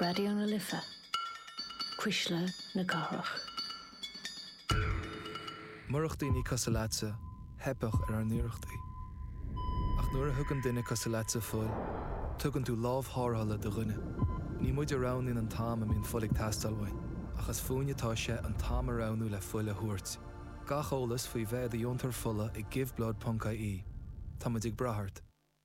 Raidió na Life, Cuisle na Cathrach. Murach daoine cosúil leatsa, theipfeadh ar ár n-iarrachtaí. Ach nuair a thugann duine cosúil leatsa fuil, tugann tú lámh tharrthála do dhuine. Ní muid a roghnaíonn an t-am a mbíonn fuil ag teastáil uainn, ach is fúinn atá sé an t-am a roghnú le fuil a thabhairt. Gach eolas faoi bheith i do dheontóir fola ag Giveblood ponc ie Tá muid ag brath ort.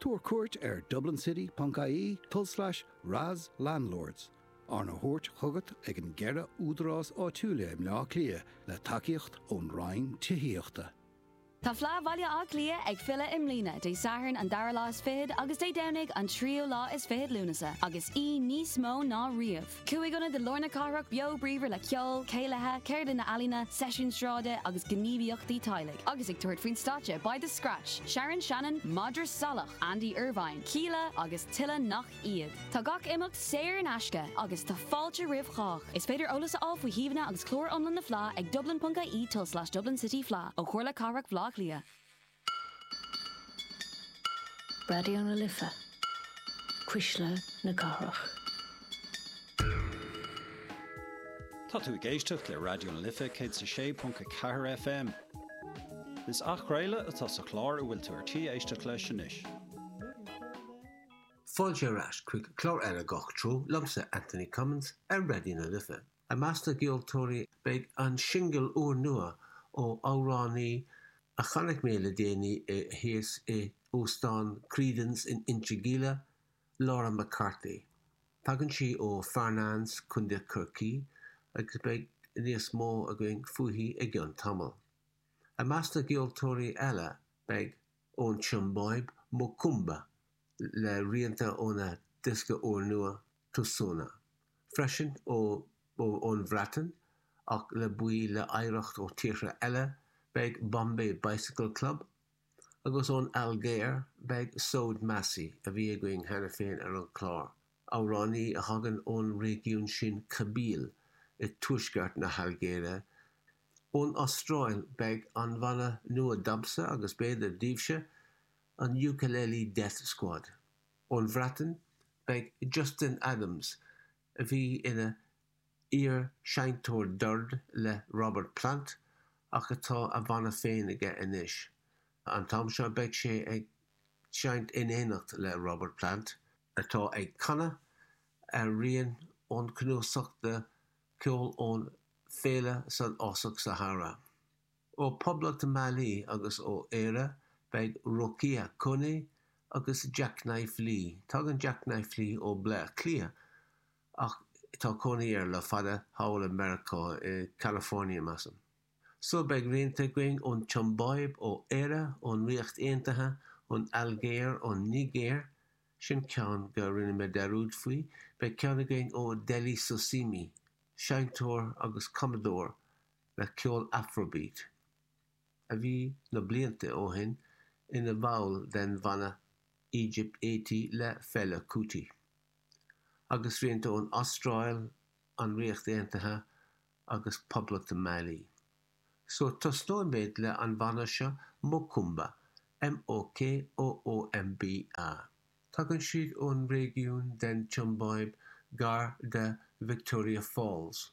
Tabhair cuairt ar dublincity.ie tulslais RAS Landlords, arna thabhairt chugat ag an gceithre údarás áitiúla i mBleá Cliath le tacaíocht ón Roinn Tithíochta. Tá Fleadh Bhaile Átha Cliath ag filleadh i mbliana, Dé Sathairn an dara lá is fichead agus Dé Domhnaigh an tríú lá is fichead Lúnasa, agus í níos mó ná riamh! Cúig ionad i lár na cathrach beo bríomhar le ceol, céilithe, ceardlanna ealaíne, seisiúin sráide agus gníomhaíochtaí teaghlaigh. Agus ag tabhairt faoin stáitse beidh The Scratch, Sharon Shannon, Madra Salach, Andy Irvine, Kíla agus tuilleadh nach iad. Tá gach imeacht saor in aisce agus tá fáilte roimh chách. Is féidir eolas a fháil faoi shuíomhanna agus clár iomlán na Fleá ag dublin.ie tul slash dublincityfleá ó Chomhairle Cathrach Bhleá Cliath. Raidió na Life, cuisle na cathrach. Tá tú ag éisteacht le Raidió na Life 106.4 FM. Is athchraoladh atá sa chlár a bhfuil tú ar tí éisteacht leis anois. Fáilte ar ais chuig clár As Gach Treo liomsa, Anthony Cummins, ar Raidió na Life. I measc na gceoltóirí beidh an singil úrnua ó amhránaí a chonaic mé le déanaí i thíos i Óstán Creedon's in Inse Geimhleach, Laura McCarthy. Tagann sí ó Farnanes, Contae Chorcaí agus beidh níos mó againn fúithi i gceann tamall. I measc na gceoltóirí eile beidh ón tSiombáib, Mokoomba, le rianta óna diosca úrnua, Tusona, freisin, ón Bhreatain, ach le baill le hoidhreacht ó tíortha eile beidh Bombay Bicycle Club, agus ón Ailgéir beidh Souad Massi, a bhí againn cheana féin ar an chlár, amhránaí a thagann ón réigiún sin Kabyle i dtuaisceart na hAilgéire. Ón Astráil beidh an bhanna nua domsa agus b'fhéidir, daoibhse, an Ukulele Death Squad. Ón Bhreatain, beidh Justin Adams, a bhí ina iar-seinnteoir doird le Robert Plant ach atá a bhanna féin aige anois. An t-am seo beidh sé ag seinnt in éineacht le Robert Plant, atá ag canadh ar rian ón cnuasach de cheol ón féile san fhásach Sahara. Ó Phoblacht Mali agus ó Éire, beidh Rokia Koné agus Jacknife Lee. Tagann Jacknife Lee ó Bhleá Cliath ach tá cónaí air le fada thall i Meiriceá, i California measaim. Só beidh rianta againn ón tSiombáib, ó Éire, ón Ríocht Aontaithe, ón Ailgéir, ón Nigéir, sin ceann go rinne mé dearúd faoi, beidh ceann againn ó Dele Sosimi, seinnteoir agus cumadóir le ceol Afrobeat, a bhí na blianta ó shin ina bhall den bhanna Egypt Eighty le Fela Kuti, agus rianta ón Astráil, an Ríocht Aontaithe agus Poblacht Mali. So tosnóimid le an bhanna seo Mokoomba, M-O-K-O-O-M-B-A. Tagann siad ón réigiún den tSiombáib gar de Victoria Falls.